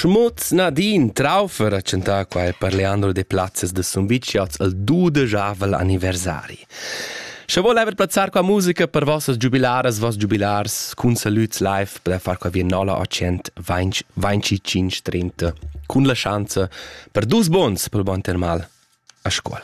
Schmutz Nadine Traufer ha chantà qua per Leandro de Plazzes de Sumvicioz il dudejavel anniversari. Sche vuol ever plazzar qua musica per vossas giubilaras, voss giubilars, cun salüts live per far qua via 0800 30 cun la schanza per dus bons pel bon termal a scuol.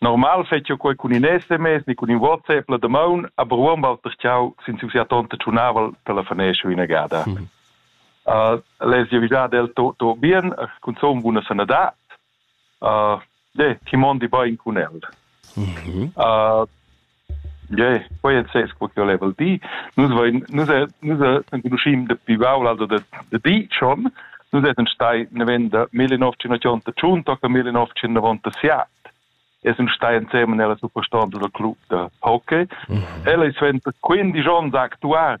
Normal fetschia quei cun in SMS ni cun in WhatsApp la damaun, aber uonn Walter Tschau sin siu sia tonta tschunavel telefonescha inagada. Mm. Uh, lez jeu dad el to, to bien, cunzun buna sanadad. Uh, de, ti mondi bein cun el. Mm -hmm. uh, Ie, quei ei ses quei ch'el leva dir. Nus vein, nus nus enconuschim dapi baul also da, da di schon. Nus essen stai navenda millenovecentochantotschun tocca millenovecentonovantasiat. Essen stai insieme nella superstonda del club da hockey. Mm -hmm. Ella è 25 onns actuar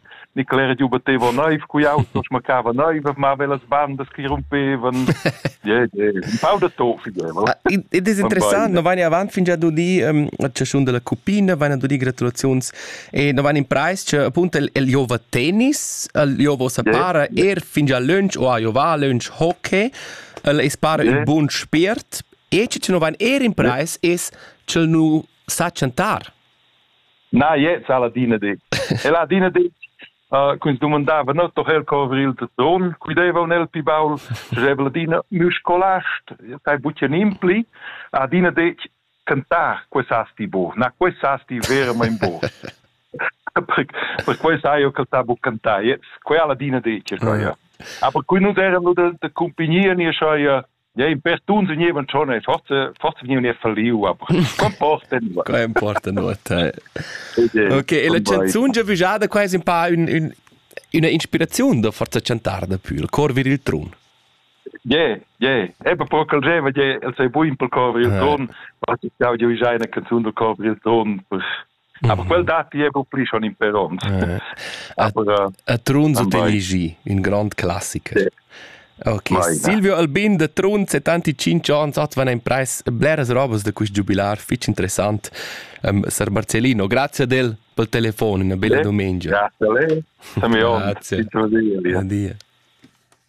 Nicola era giu batteva neiv cu jau non smaccava neiv mava las bandas che rumpevan yeah, yeah. un pau da to fideva ed es interessant no vain avant fin già do di um, chaschun della cupina vain do di gratulaziuns e no vain in preis che appunto il, il Jova tennis il Jova sa para er fin già lunch o a Jova lunch hockey el es para yeah. un buon spirt e che no vain er in preis es che nu sa chantar Na, jetzt ha ladina detg. E ladina detg uh, quins domandava no doch el covri il don qui deva nel pi baul jeb ladina mü scolast tai bucen impli adina detg cantar questasti bo na questasti veramente bo per quei sai io che tabu cantar jetzt quella ladina detg ja aber qui nu era nu de de compagnia ni schoi Ei per tun segneva schon e forse forse vegniva falliu aber comporta nuot. Quei importa nuot. Ok, e la canzun giavüjada quai es un pa un, un, una inspiraziun da forza chantar da pür, cor vir il trun. Yeah, yeah. Eben pro cal geva je el sei buin pel cor vir il trun, was ich ja je una canzun del cor vir il trun. Mm. Aber quel datti era pli schon in perons. Eh. Aber, a Trunz ho elegì ün grand classiker. Sì. Ok, vai, Silvio Albin de Trunz e tanti 5 ans hat van ein preis bleras robas da quist giubilar fich interessant um, Sar Marcellino. Grazie del pel telefon, una bella domenica. Grazie a lei. Grazie. Buon dia.